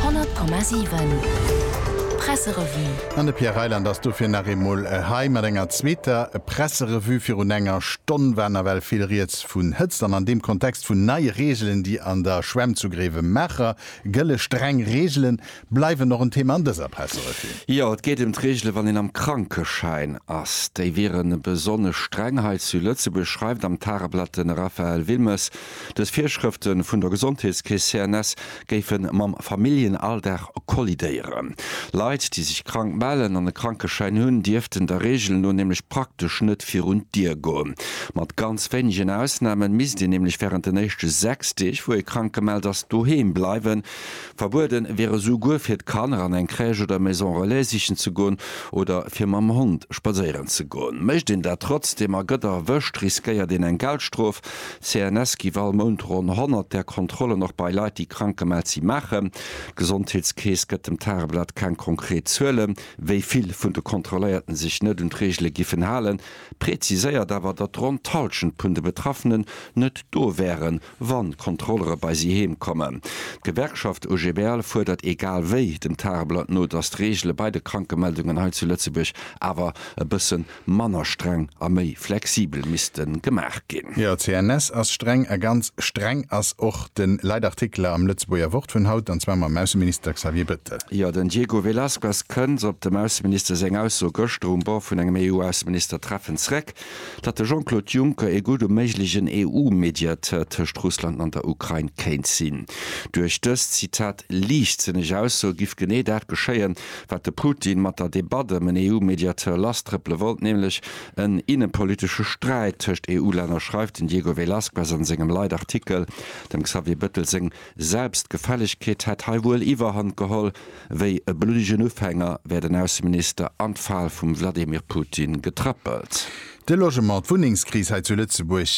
100,7 Presserevue. An de Pierre Reyland ass dofir nach eemol hei mat enger zweeter Presserevue. Virun enger Stonn war nawell vill Rieds vun Hëtzt an an deem Kontext vun neie Reegelen, déi an der Schwämm zu Gréiwemaacher gëlle. Streng Reegelen, bleiwen och en Thema an dëser Presserevue. Jo, et geet ëm d'Reegele wann een am Krankeschäin ass. Déi wieren besonnesch streng hei zu Lëtzebuerg, schreift am Tageblatt de Raphaël Wilmes. Dës Virschrëfte vun der Gesondheetskeess CNS géife mam Familljenalldag kollidéieren. Leit, déi sech krank mellen an e Krankeschäin hunn, dierften der Reegel no nämlech praktesch net virun d'Dier goen. Mat ganz wéinegen Ausnamen misst een nämlech wärend den éischte 6 Deeg, wou ee krank gemellt ass, doheem bleiwen. Verbueden wier esou guer fir d'Kanner an eng Crèche oder Maison Relais sichen ze goen oder fir mam Hond spadséieren ze goen. Mécht een dat trotzdeem a gëtt erwëscht, riskéiert een eng Geldstrof. D'CNS giff all Mount ronn 100 där Kontrollen och bei Leit déi krank gemellt si maachen. D'Gesondheetskeess gëtt dem Tageblatt keng konkret Zuelen, wéi vill vun de Kontrolléierten sech net un d'Reegele giffen halen, präziséiert awer, datt ronn d'Halschent vun de Betraffenen net do wären, wann d'Kontrollere bei si heem kommen. D'Gewerkschaft OGBL fuerdert egal wéi dem Tageblatt no, datt d'Reegele bei de Krankemeldungen hei zu Lëtzebuerg awer e bësse manner streng a méi flexibel misste gemaach ginn. Jo, CNS ass streng, a ganz streng ass och de Leitartikel am Lëtzebuerger Wort vun haut, an zwar mam Ausseminister Xavier Bettel. Jo, den Diego Velazquez kënnt op dem Ausseminister seng Ausso gëschter um Bord vun engem EU-Ausseministertreffen zréck. datt de Jean-Claude Juncker ee gudde méiglegen EU-Mediateur tëscht Russland an der Ukrain kéint sinn. Duerch dës, Zitat, liichtsënneg Ausso giff genee dat geschéien, wat de Putin mat der Debatt ëm en EU-Mediateur lasstrëppele wollt, nämlech en innepolitesche Sträit tëscht EU-Länner, schreift den Diego Velazquez a sengem Leitartikel. Dem Xavier Bettel seng Selbstgefällegkeet hätt hei wuel Iwwerhand geholl. Wéi e bluddegen Ufänger wär den Ausseminister an d'Fal vum Wladimir Putin getrëppelt. De Logement, d'Wunnengskris hei zu Lëtzebuerg,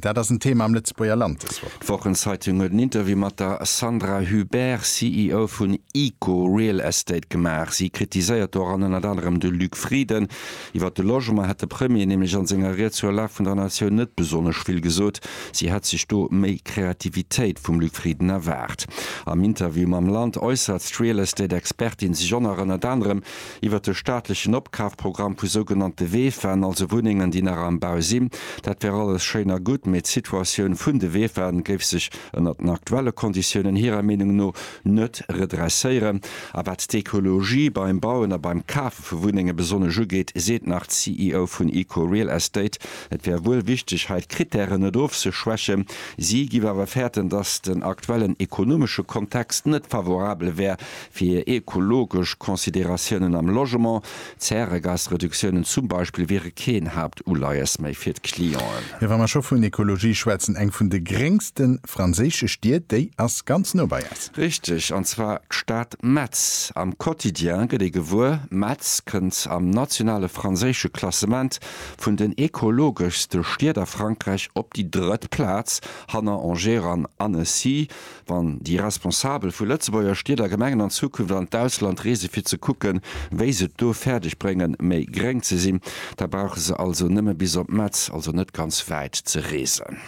dat ass en Thema am Lëtzebuerger Land dës Woch. D'Wochenzeitung huet en Interview mat der Sandra Hubert, CEO vun Eco Real Estate gemaach. Si kritiséiert doran ënnert anerem de Luc Frieden, Iwwer de Logement hätt de Premier nämlech an senger Ried zur Lag vun der Natioun net besonnesch vill gesot. Si hätt sech do méi Kreativitéit vum Luc Frieden erwaart. Am Interview mam Land äussert d'Real Estate Expertin sech on ënnert anerem iwwer de staatlechen Opkafprogramm vu sougenannte Weefen, also Wunnengen déi nach am Bau sinn. Dat wär alles schéin a gutt, mee d'Situatioun vun de Weefen géif sech ënnert den aktuelle Konditiounen hirer Meenung no net redresséieren. A wat d'Ekologie beim Bauen a beim Kafe vu Wunnenge besonnesch ugeet, seet nach d'CEO vun Eco Real Estate, et wär wuel wichteg, hei d'Krittären net ofzeschwächen. Si géif awer fäerten, datt den aktuellen ekonomesche Kontext net favorabel wär fir ekologesch Consideratiounen am Logement. Zäregasreduktiounen zum Beispill wiere keen Haaptuleies méi fir d'Clienten. Wa mer scho vun Ekologie schwätzen, eng vun de gréngste franséische Stied, déi ass ganz no bei eis. Richteg, an zwar d'Stad Metz. Am Quotidien gëtt ee gewuer, Metz kënnt am nationale franséische Klassement vun den ekologeschste Stied a Frankräich op déi drëtt Plaz, hanner Angers an Annecy. Wann déi Responsabel vu Lëtzebuerger Stied a Gemengen an Zukunft an d'Ausland reese fir ze kucken, wéi se et do fäerdeg bréngen, méi gréng ze sinn, da brauche se also nëmme bis op Metz, also net ganz wäit ze reesen.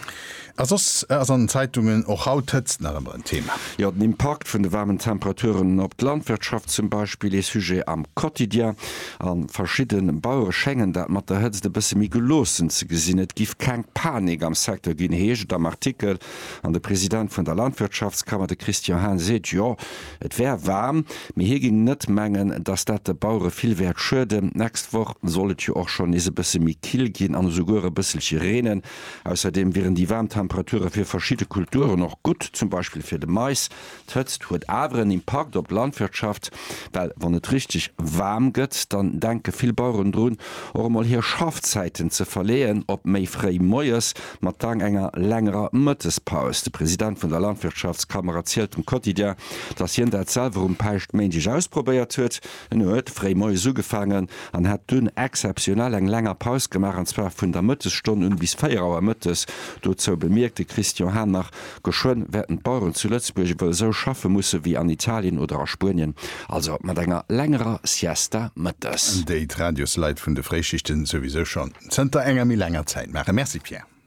A soss ass an den Zeitungen och haut d'Hëtzt nach ëmmer en Thema. Jo, den Impakt vun de waarmen Temperaturen op d'Landwirtschaft zum Beispill, ee Sujet am Quotidien. A verschidde Bauere schéngen dat mat der Hëtzt e bësse méi geloossen ze gesinn. Et giff keng Panik am Secteur ginn, heescht et am Artikel. An de President vun der Landwirtschaftskammer, de Christian Hein, seet, jo, et wär waarm, mee hie géing net mengen, datt dat de Bauere vill wäert schueden. D'nächst Woch soll et jo och schonn nees e bësse méi kill ginn an esouguer e bësselche reenen. Ausserdeem wieren déi waarm Temperature fir verschidde Kulturen och gutt, zum Beispill fir de Mais. D'Hëtzt huet awer en Impakt op d'Landwirtschaft, well wann et richteg waarm gëtt, dann denke vill Baueren drun, och emol hir Schaffzäiten ze verleeën op méi fréi moies mat dann enger längerer Mëttespaus. De President vun der Landwirtschaftskammer erzielt dem Quotidien, datt hien dat selwer um Päischtméindeg ausprobéiert huet. En huet fréi moies ugefaangen an hat dunn exzeptionell eng länger Paus gemaach, an zwar vun der Mëttesstonn un bis 4 Auer mëttes. Dozou bemierkt de Christian Hahn nach, Geschwënn wäerten d'Baueren zu Lëtzebuerg ewell esou schaffe musse wéi an Italien oder a Spuenien, also mat enger längerer Siesta mëttes. Déi d'Radiosleit vun de Fréischichten souwisou schonn zënter enger méi laanger Zäit maachen. Merci Pierre.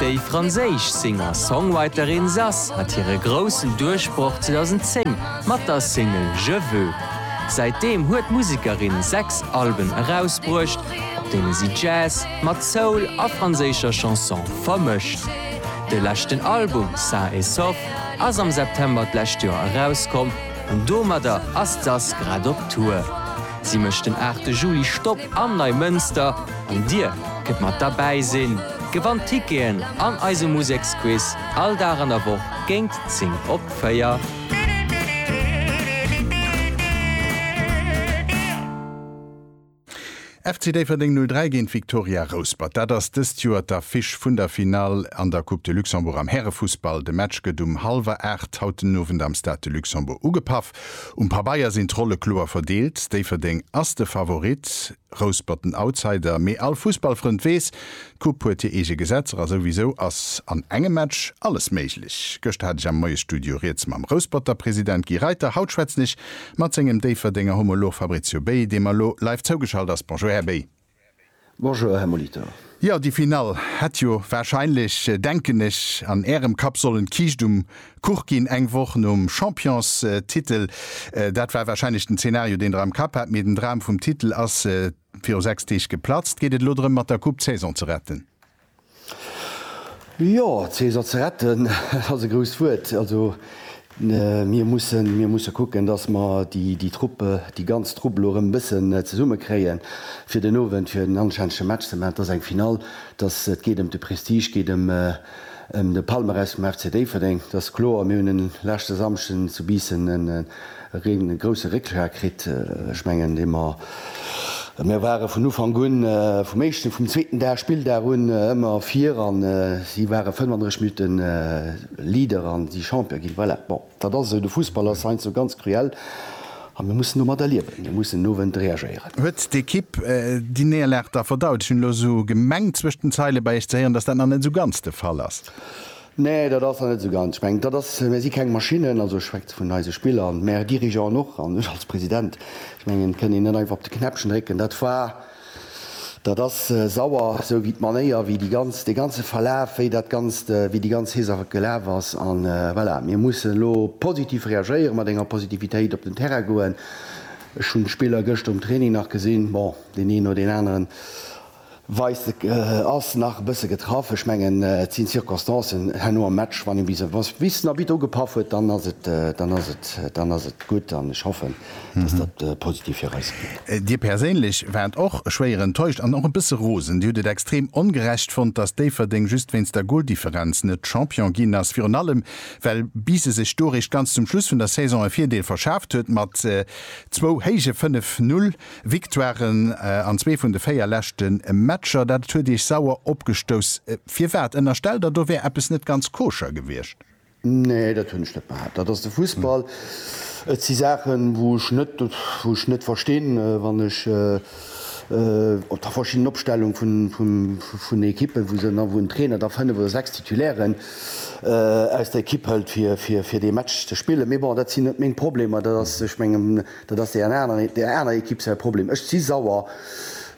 Déi franséisch Singer-Songwriterin Zaz hat hire groussen Duerchbroch 2010 mat der Single Je veux. Säitdeem huet d'Musekerin sechs Alben erausbruecht, op deene si Jazz mat Soul a franséischer Chanson vermëscht. De leschten Album Sain et Sauf ass am September d'lescht Joer erauskomm. An domadder ass d'Sass grad op Tour. Si mécht den 8 Juli Stopp am Neimënster an dir kënnt mat derbäi sinn, gewannt Ticketen an eise Museksquiz all Dag an der Woch géint 10 op 4. FC Déifferdeng 0, 3 géint Viktoria Rouspert. Dat ass dëst Joer d'Affiche vun der Finall an der Coupe de Luxembourg am Härefussball. De Match gëtt um hallwer 8 haut den Owend am Stade de Luxembourg ugepaff. Um Pabeier sinn d'Rolle kloer verdeelt, Déifferdeng ass de Favorit, Rouspert den Outsider. Mee all Fussballfrënd weess, d'Coupe huet hir eege Gesetzer a souwisou ass an engem Match alles méiglech. Gëschter hat ech am Moiesstudio riets mam Rousperter President Guy Reiter, haut schwätzen ech Mat sengem Déifferdenger Homolog Fabrizio Bey, deem mer elo live zougeschalt ass. Bonjour Här Bey. Bonjour Här Molitor. Jo, déi Finall hätt jo wahrscheinlech, denken ech, an Ärem Kapp sollen d'Kiischt um Kuch ginn, eng Woch nom Championstitel. Dat war wahrscheinlech den Zeenario, deen Der am Kapp hat, mee den Dram vum Titel ass viru 6 Deeg geplatzt. Geet et elo drëm, mat der Coupe d'Saison ze retten? Jo, d'Caeser ze retten, dat ass e grousst Wuert. Also mir mussen, mir musse kucken, datt mer déi, déi Trupp, déi ganz Trupp elo erëm e bëssen zesumme kréien, fir den Owend, fir en anstännege Match ze maachen. Et ass eng Finall, et ass, et geet ëm de Prestige, geet ëm de Palmarès vum FC Déifferdeng, dat ass kloer. Mir hunn e leschte Samschden zu Biissen en, Reen e grousse Réckschlag kritt. Ech mengen, dee mer, mir ware vun Ufank un, vum éischten, vum zweeten Dag, Spilldag un, ëmmer vir a si ware 35 Minutte Leader a si Champion ginn. Voilà, bon, dat ass esou, de Fussball ass heiansdo ganz cruel a mir mussen domadder liewen, mir mussen den Owend reagéieren. Huet d'Ekipp déi Néierlag da verdaut? Ech hunn elo esou gemengt, zwëscht den Zeile bei Iech ze héieren, datt dat nach net esou ganz de Fall ass. Nee, dat ass der net esou ganz. Ech mengen, dat ass, mär si keng Maschinnen, also ech schwätze vun eise Spiller an mär Dirigeanten och an ech als President. Ech mengen, et kënnt een net einfach op de Knäppchen drécken. Dat war, dat ass sauer, esou wéi d'Manéier, wéi déi ganz, dee ganze Verlaf, wéi dat Ganzt, wéi déi ganz Saach gelaf ass. A voilà, mir mussen elo positiv reagéieren, mat enger Positivitéit op den Terrain goen. Ech hunn d'Spiller gëschter um Training nach gesinn. Bon, deen een oder deen aneren. Weise ass nach e bësse getraff. Ech mengen, et sinn d'Circonstancen herno am Match. Wann ee bis op den Arbitt ugepaff huet, dann ass et, dann ass et, dann ass et gutt. An ech hoffen, dass dat positiv fir eis wier. Dir perséinlech waart och schwéier enttäuscht an och e bësse rosen. Dir hutt et extrem ongerecht fonnt, dass Déifferdeng just wéinst der Goldifferenz net Champion ginn ass. Virun allem, well Bise sech do eréischt ganz zum Schluss vun der Saison e Virdeel verschaaft huet mat zwou héije 5 Null. Victoiren an zwee vun de véier leschte Matcher, dat huet Iech sauer opgestouss. Firwat? Ënnerstellt Der, do wär eppes net ganz koscher gewiescht? Nee, dat hunn ech net behaapt. Dat ass de Fussball. Et si Saachen, wou ech net, wou ech net verstinn, wann ech op der verschiddenen Opstellung vun, vun, vun Ekippen, wou se dann, wou en Trainer da fënnef oder sechs Titulairen aus der Ekipp hëlt, fir, fir, fir dee Match ze spillen. Mee bon, dat sinn net meng Problemer. Dat ass, ech mengen, Dat ass där aner Ekipp säi Problem. Ech si sauer,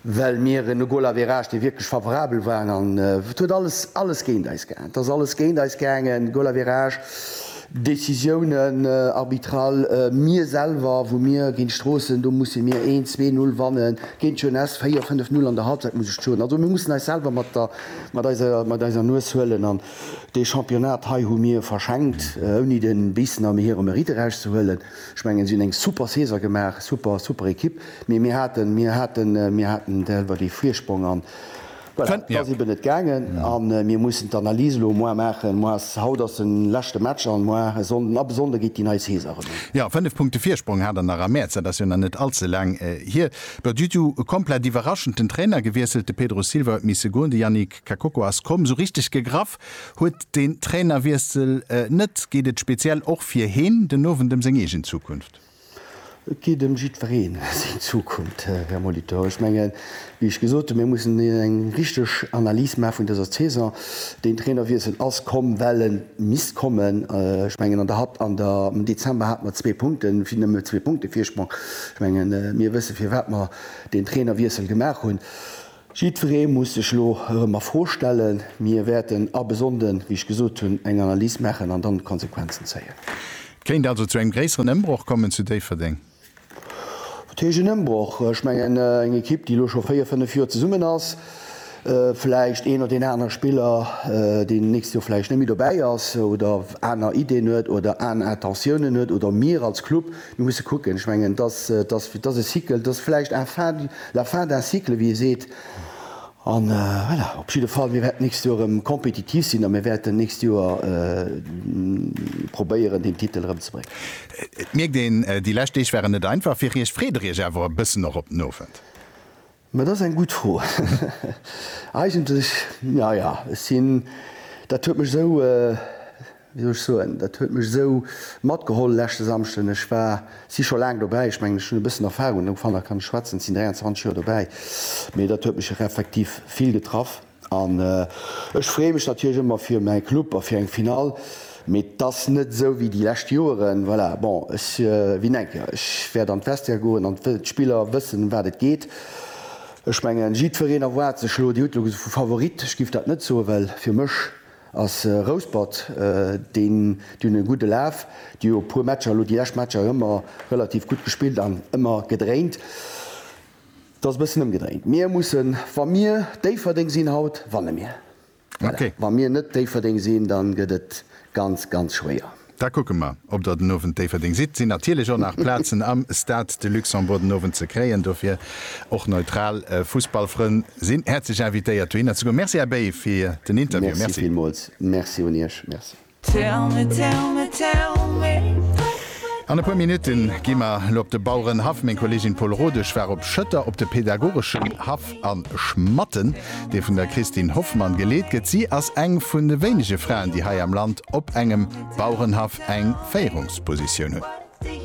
well mir en Golaverage, dee wierklech favorabel war, an et huet alles, alles géint eis gaangen. Et ass alles géint eis gaangen, Golaverage, Décisiounen, arbitral, mir selwer, wou mir géint Stroossen, do musse mir een, zwee, null wannen, géint d'Jeunesse véier, fënnef, null an der Halbzeit, muss ech soen. Also mir mussen eis selwer mat der, mat eiser, mat eiser Nues huelen. An dee Championnat hei hu mir verschenkt, ouni de Biissen am hirem Mérite erauszehuelen. Ech mengen si hunn eng super Saison gemaach, super super Ekipp, mee mir haten mir haten mir haten selwer dee Virsprong an voilà, et ass eben net gaangen a mir mussen d'Analys elo moar maachen. Moar ass haut ass de leschte Match an moar e Sonnden ab e Sonnde geet déi nei Saison erëm un. Jo, 5 Punkte Virsprong hat der nach am Mäerz, dat ass jo nach net all ze laang hier. Duerf Ditu komplett iwwerraschend den Trainer gewiesselt, de Pedro Silva huet misse goen, de Yannick. D'Kakoko ass komm, sou richteg gegraff huet den Trainerwiessel net. Geet et speziell och fir heen den Owend ëm seng eegen Zukunft? Et geet ëm jiddwereen seng Zukunft, Här Molitor. Ech mengen, wéi ech gesot hunn, mir mussen eng richteg Analys maache vun dëser Saison. Deen Trainerwiessel ass komm, well e misst kommen. Ech mengen, an der Hal an der am Dezember hate mer zwee Punkte vi nëmme zwee Punkte Virsprong. Ech mengen, mir wësse firwat mer deen Trainerwiessel gemaach hunn. Jiddweree muss sech elo erëm a Fro stellen. Mir wäerten abë Sonnden, wéi ech gesot hunn, eng Analys maachen an dann d'Konsequenzen zéien. Et kéint also zu engem gréisseren Ëmbroch kommen zu Déifferdeng? Wat heescht en Ëmbroch? Ech mengen, eng Ekipp, déi elo scho véier, fënnef Joer zesummen ass, vläicht een oder deen anere Spiller, deen d'nächst Joer vläicht net méi dobäi ass oder aner Iddien huet oder aner Intentiounen huet oder mir als Club, Mir musse kucken, ech mengen, dass dass e Cycle, dass vläicht un fin du, la fin d'un cycle, wéi ee seet. A voilà, op jidde Fall, mir wäerten d'nächst Joer erëm kompetitiv sinn a mir wäerten d'nächst Joer probéieren, deen Titel erëmzebréngen. Et mierkt een, déi lescht Deeg waren net einfach fir Iech. Freet Der Iech awer e bëssen och op den Owend? Ma dat ass eng gutt Fro. Eigentlech, na ja, ech sinn, dat huet mech esou, wéi soll ech soen, dat huet mech esou matgeholl leschte Samschden. Ech war, si scho laang dobäi, ech mengen, ech hunn e bëssen Erfahrung, ufank nach kann ech schwätzen, ech sinn 23 Joer dobäi, mee dat huet mech effektiv vill getraff. An ech freeë mech natierlech ëmmer fir mäi Club a fir eng Finall, mee 't ass net esou wéi déi lescht Joeren. Voilà, bon, ech win eng Kéier, ech wäert an d'Vestiaire goen an d'Spiller wëssen, ëm wat et geet. Ech mengen, jiddwereen erwaart sech elo, Dir hutt elo vu Favorit, ech giff dat net soen, well fir mech ass Rouspert, déi hunn e gudde Laf, déi hu e puer Matcher elo, déi lescht Matcher ëmmer relativ gutt gespillt an ëmmer gedréint. Et ass e bëssen ëmgedréint. Mir mussen, wa mir Déifferdeng sinn haut, wanne mir. Voilà. Wa mir net Déifferdeng sinn, da gëtt et ganz, ganz schwéier. Da kucke mer, ob Der den Owend Déifferdeng sidd. Et sinn natierlech och nach Plazen am Stade de Luxembourg den Owend ze kréien. Dofir och neutral Fussballfrënn sinn häerzlech invitéiert dohinner ze goen. Merci, Här Bey, fir den Interview. Merci. Merci villmools. Merci un Iech. Merci. An e puer Minutte gi mer elo op de Bauerenhaff. Meng Kolleegin Paule Rodesch war op Schëtter op de pädagogeschen Haff a Schmatten, dee vun der Christine Hoffmann geleet gëtt. Si ass eng vun de wéinege Fraen, déi hei am Land op engem Bauerenhaff eng Féierungspositioun hunn.